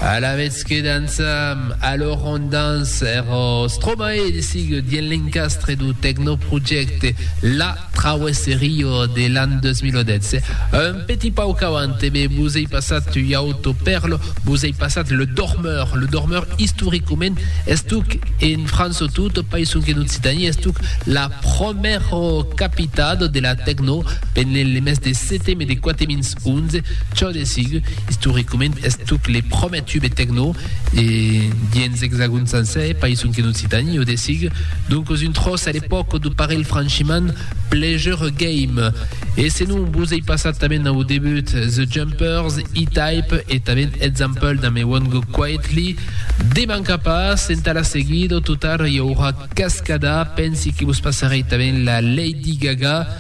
Alavetz que dançam, alors on danse ero Stromae de Sig dien l'encastre dau tecnoprojècte La Traverse Rio de l'an 2016. Un petit pauc avant e me vos ei passat ua auto perlo, vos ei passat Le Dormeur. Le Dormeur istoricament estuc en França o tot païson qu'en Occitanie estuc la promèro capitat de la tecno pendent le mes de seteme de quate mins. 11, çò de sigur, istoricament, es tuc le promèr tube tecno e dens Exagon sencer, pas sonque en Occitanie, o de sigur, doncos un tròç a l'epòca do parelh franchiment Pleasure Game. E senon vos ei passat tanben au debut The Jumpers, E-Type e tanben Example damb I Won't Go Quietly, de mancar pas, entà la seguida, au total, i aurà cascada, pensi que vos passarei tanben la Lady Gaga,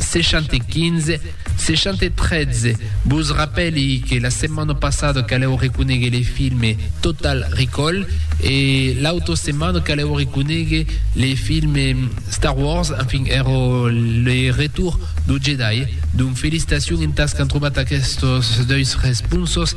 615 613 Vos rapèli que la setmana passada calèu reconegue le filme Total Recall e l'auta setmana calèu reconegue le filme Star Wars, enfin èra le retour do Jedi. Donc felicitacion entas qu'an trobat aquestos deus responsos.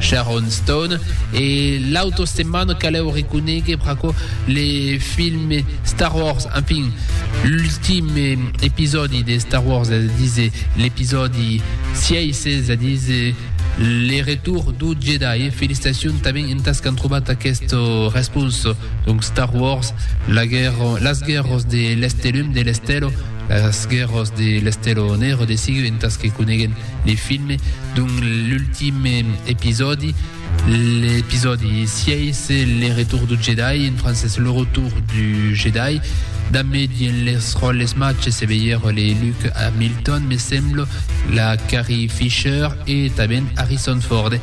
Sharon Stone e l'auto setmana calèu reconéguer pr'aquò le film Star Wars en fin l'ultim episòdi de Star Wars es a díser l'episòdi 6 es a díser le retour du Jedi felicitacion tanben entàs qu'an trobat aquesta responsa donc Star Wars la guerra las guerras de l'Estelum de l'Estèla las guerras de l'Estèla Nègra de sigur entàs que coneguem De film dont l'ultim episòdi, l'episòdi 6, Le Retour du Jedi, en francés Le Retour du Jedi, dambe dins les ròles matge se veire le Luke Hamilton, me semblo, la Carrie Fisher e tanben Harrison Ford.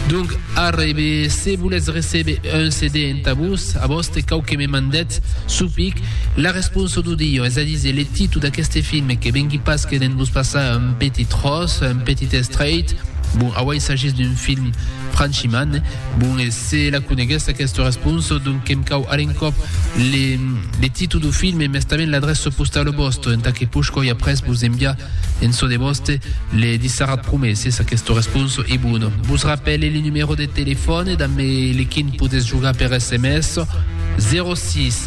Donc arrebe, se volètz recebe un CD entà vos, a vòste cau que me mandètz supic La responsa d'o dilho, es a díser le titu d'aqueste film, que vengui pas que d'en vos passar un petit ros, un petit estreit, bon, auei s'agís d'un film franchimant bon, e se la coneguètz aquesta responsa, donc que'm cau a l'encòp le le titu d'o film e mestament l'adrèça postala vòsta, entà que push coi après vos enviar en çò de vòste le disserat prumèr se s'aquesta responsa ei bona. Vos rapèle le numèro de telefòn e damb lequin podètz jogar per sms, 06.